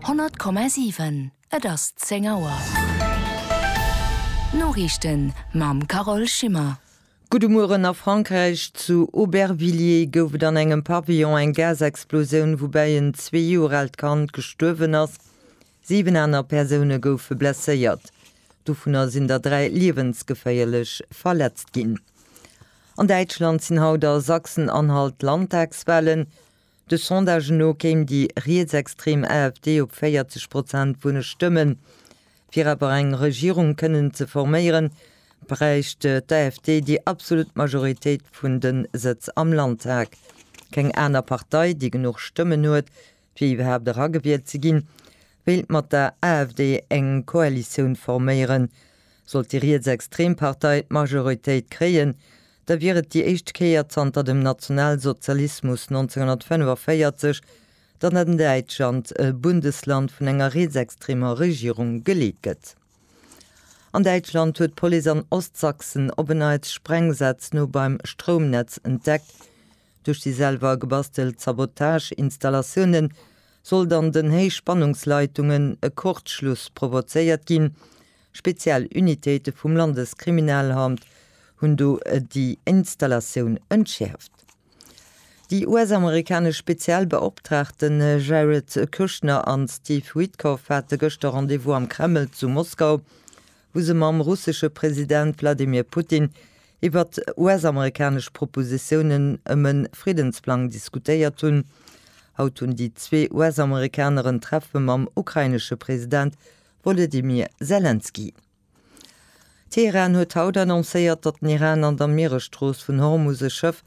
100,7 Et ass 10 Auer. D'Noriichten mam Carole Schimmer. Gudde Mueren, A Frankräich, zu Aubervilliers, gouf et an engem Pavillon eng Gasexplosioun, woubäi en zwee Joer aalt Kand gestuerwen ass. Siwen aner Persoune goufe blesséiert, dovunner sinn der dräi liewensgeféierlech verletzt ginn. An Däitschland sinn haut a Sachsen-Anhalt d'Landtagswalen. De Sondage no kéim déi rietsextrem AfD op 40 Prozent vun de Stëmmen. Fir awer eng Regierung kënnen ze forméieren, bräicht d'AfD déi absolut Majoritéit vun de Sëtz am Landtag. Keng aner Partei, déi genuch Stëmmen huet, fir iwwerhaapt eragewielt ze ginn, wéilt mat der AfD eng Koalitioun forméieren. Sollt déi rietsextrem Partei d'Majoritéit kréien, Da wier et déi éischt Kéier zanter dem Nationalsozialismus 1945, datt an Däitschland e Bundesland vun enger rietsextremer Regierung geleet gëtt. An Däitschland huet d'Police an Ostsachsen op en Neits Sprengsätz no beim Stroumnetz entdeckt. Duerch déi selwer gebastelt Sabotage-Installatioune sollt an den Héichspannungsleitungen e Kurzschluss provozéiert ginn. Speziell Unitéite vum Landeskriminalamt hunn do déi Installatioun entschäerft. Déi US-amerikanesch speziell Beoptraagten Jared Kushner an Steve Witkoff hate gëschter Rendez-vous am Kreml zu Moskau, wou se mam russesche President Wladimir Putin iwwert US-amerikanesch Propositiounen ëm e Friddensplang diskutéiert hunn. Haut hunn déi zwee US-Amerikaner en Treffe mam ukrainesche President Wolodymyr Selenskyj, Teheran huet haut annoncéiert, datt den Iran an der Mieresstrooss vun Hormus e Schëff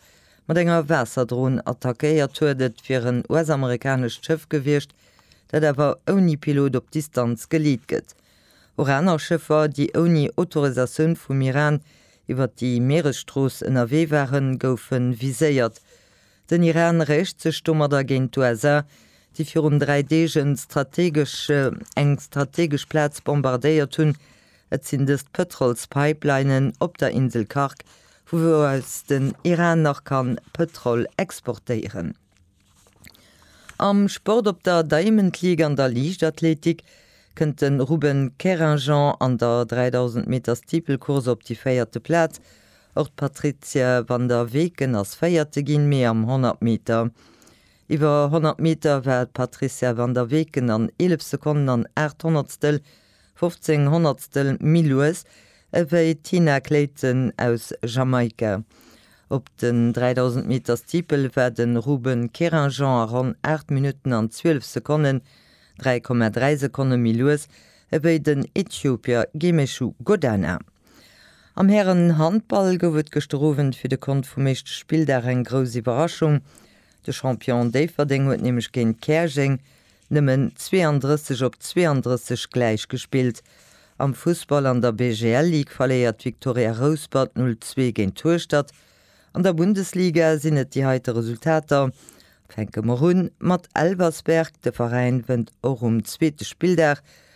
mat enger Waasserdron attackéiert huet. Et wier en US-amerikanescht Schëff gewiescht, dat awer ouni Pilot op Distanz geleet gëtt. Och aner Schëffer, déi ouni Autorisatioun vum Iran iwwer déi Mieresstrooss ënnerwee waren, goufe viséiert. Den Iran réicht sech domadder géint d'USA, déi virun dräi Deeg en strategesch, eng strategesch Plaz bombardéiert hunn. Et sinn dëst d'Pëtrolspipelinen op der Insel Kharg, vu wou aus den Iran nach kann Pëtrol exportéieren. Am Sport, Op der Diamond League an der Liichtathletik kënnt de Ruben Kerinjan an der 3000 Meter Steeplecourse op déi véierte Plaz. Och d'Patrizia van der Weken ass Véierte ginn, mee am 100 Meter. Iwwer 100 Meter war d'Patrizia van der Weken an 11 Sekonnen an aacht Honnertstel, 15 Honnertstel, méi lues ewéi d'Tina Clayton aus Jamaika. Op den 3000 Meter Steeple war de Ruben Querinjean a ronn aacht Minutten an zwielef Sekonnen, 3,3 Sekonne méi lues ewéi den Äthiopier Gemechu Godana. Am Hären-Handball gouf et gëschter Owend fir de Kont vum éischte Spilldag eng grouss Iwwerraschung. De Champion Déifferdeng huet nämlech géint Käerjeng nëmmen 32 op 32 gläich gespillt. Am Fussball an der BGL-Ligue verléiert d'Victoria Rouspert 0, 2 géint Hueschtert. An der Bundesliga sinn et déi heite Resultater. Fänke mer un mat Elversberg, de Veräin wënnt och um zweete Spilldag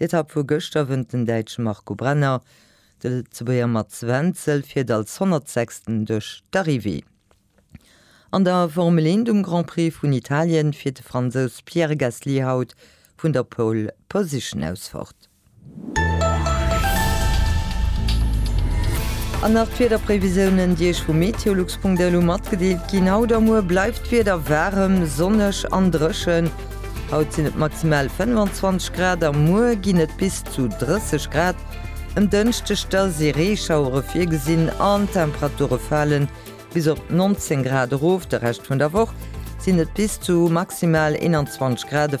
D'Etapp vu gëschter wënnt den Däitsche Marco Brenner. De Lëtzebuerger Mats Wenzel fiert als 106. duerch d'Arrivée. An der Formel 1 um Grand Prix vun Italien fiert de Fransous Pierre Gasly haut vun der Pole Position aus fort. An nach d'Wiederprévisiounen, déi Iech vu meteolux.delu matgedeelt ginn. Haut a muer bleift d'Wieder waarem, sonneg an dréchen. Haut sinn et maximal 25 Grad a muer ginn et bis zu 30 Grad. Um Dënschdeg da si Reeschauere virgesinn an d'Temperature fale bis op 19 Grad erof. De Rescht vun der Woch sinn et bis zu maximal 21 Grad.